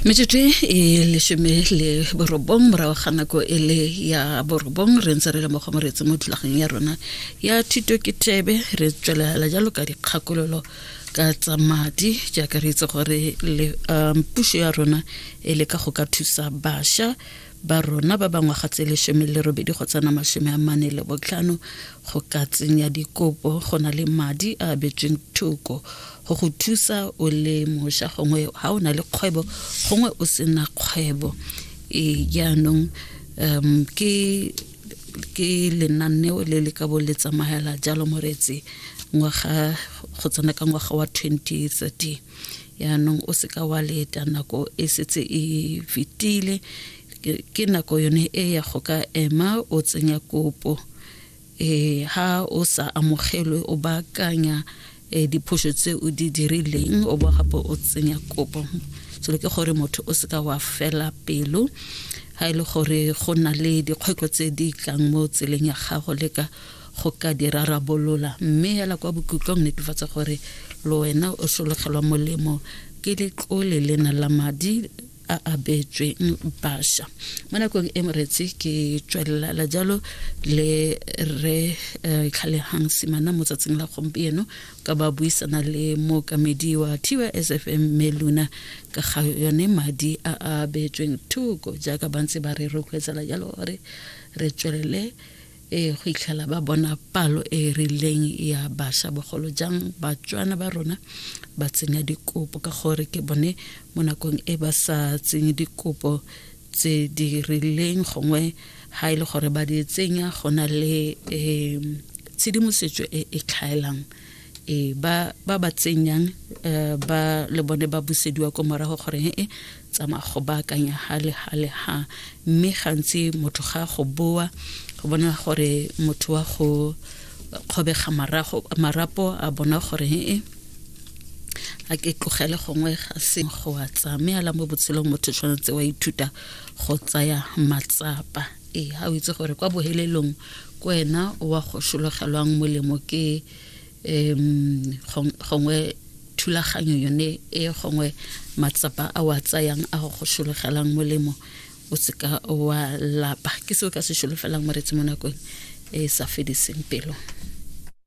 metsotso e lesome le borobong morago ga nako e le ya borobong re ntse re le mo go moretse mo thulageng ya rona ya thuto ke thebe re tswelela jalo ka dikgakololo ka tsa madi jaaka re itse gore um, puso ya rona e le ka go ka thusa basha ba rona ba bangwaga tse lesome le robedi go tsena masome a mane le botlhano go ka tsenya dikopo go na le madi a abetsweng thoko go go thusa o le mošwa gongwe ga o na le kgwebo gongwe o sena kgwebo e jaanong um ke ke lenaneo le le ka bo le tsamaela jalo moreetse ngwaga go tsena ka ngwaga wa 2013 yaanong o seka wa leta nako e setse e fetile ke nako yone e ya go ka ema o tsenya kopo eh ha o sa amogelwe o baakanya eh, diphoso tse o di dirileng o bo gape o tsenya kopo selo ke gore motho o seka wa fela pelo ga e le gore go na le dikgwetlho tse di tlang mo tseleng ya gago leka go ka di rarabolola mme hela kwa bokhutlong netefatsa gore le wena o sologelwa molemo ke letlole lena la madi a a beetsweng basha mo nakong e moretsi ke tswelelela jalo le re eh, tlhalehang simana mo tsatsing la gompieno ka ba buisana le mookamedi wa tysfm mme luna ka ga yone madi a a beetsweng thoko jaaka bantse ba re rotloetsela jalo gore re tswelele e go itlhela ba bona palo e e rileng ya basha bogolo jang batswana ba rona ba tsenya dikopo ka gore ke bone mo nakong e ba sa tsenye dikopo tse di rileng gongwe ga e le gore ba di tsenya go na le um tshedimosetso e e tlhaelang e ba ba ba tsenyang eh, ba le bone ba busediwa ko morago gore e tsamaya go baakanya ha le ha le ha mme gantsi motho ga go boa go bona gore motho wa go kgobega marago marapo a bona gore ee a ke tlogele gongwe ga se go a tsaya mme ala mo botshelong motho tshwanetse wa ithuta go tsaya matsapa ee ga o itse gore kwa bohelelong ko wena wa go shologelwang molemo ke gongwe thulaganyo yone e gongwe matsapa a wa tsayang a go go sologelang molemo o seka wa lapa ke se o ka se sologelang moretsi mo nakong e sa fediseng pelo